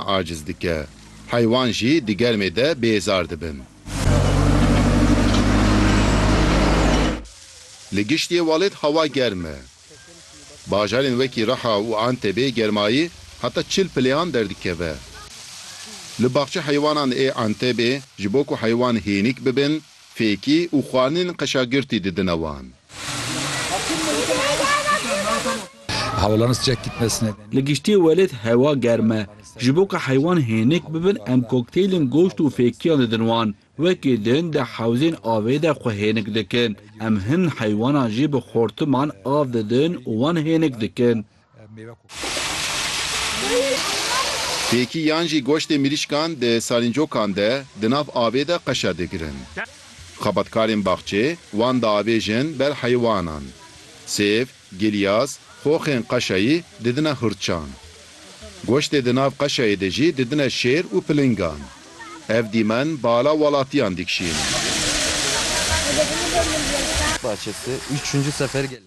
Aciz dike. Heywan jî di germê de bêzar dibin. Li giştî welêt hewa germ e. Bajarên wekî Raha û Antebê germayî heta çil pileyan derdikeve. Li baxçe heywanan ê Antebê ji bo ku heywan hênîk bibin, Fêkî û xwanin qeşa girtî didine wan. Li giştî welêt hewa germ e. Ji bo ku heywan hênik bibin em kokteylên goşt û fêkiyan didin wan. Wekî din di hewzên avê de xwe hênik dikin. Em hin heywanan jî bi xortiman av didin û wan hênik dikin. Pêkî yan jî goştê mirîşkan di salîncokan de di nav avê de qeşa digirin. Xebatkarên baxçê wan diavêjin ber heywanan. Sêv, gilyas, xoxên qeşayî didine hurçan. Goştê di nav qeşayê de jî didine şêr û pilingan. Ev dîmen bala welatiyan dikişîn.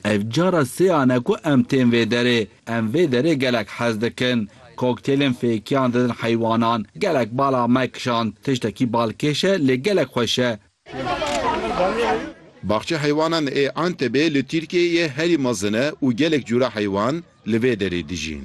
Ev cara sêyan e ku em tên vê derê. Em vê derê gelek hez dikin. Koktêlên fêkiyan didin heywanan. Gelek bala me kişand. Tiştekî balkêş e lê gelek xweş e. Baxçe heywanan ê Antebê li Tirkiyeyê herî mezin e û gelek cûra heywan li vê derê dijîn.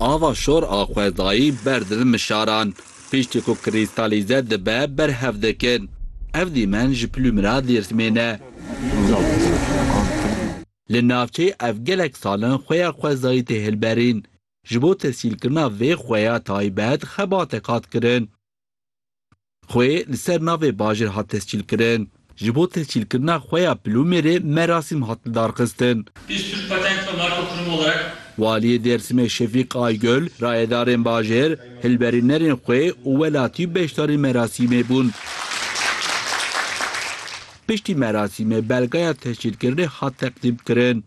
Ava şor a xwezayî ber dil mişaran piştî ku krîstalîze dibe berhev dikin. Ev dîmen ji plûmira Dêrsimên e. Li navçeyê ev gelek sal in xuya xwezayî tê hilberîn. Ji bo tesîlkirina vê xuya taybet xebateke hat kirin. Xwe li ser navê bajêr hat tescîlkirin. Ji bo tescîlkirina xwe ya Plûmêrê merasîm hat lidarxistin. Biz Türk Patent ve Marka Kurum olarak. Waliyê Dêrsimê Şefîk Aygöl, rayedarên bajêr, hilberînerên xwe û welatî beşdarî merasîmê bûn. Piştî merasîmê belgaya tescîlkirinê hat teqdîmkirin.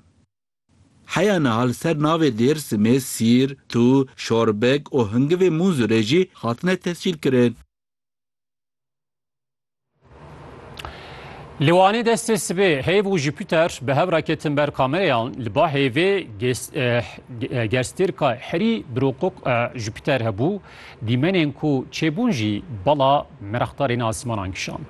Heya niha li ser navê Dêrsimê sîr, tû, şorbek û hingivê Mûnzûrê jî hatine tescîlkirin. Li Wanê destê sibê heyv û Jupiter bi hev re ketin ber kamereyan. Li ba heyvê gerstêrka herî biroqoq Jupiter hebû. Dîmenên ku çêbûn jî bala merexdarên asmanan kişand.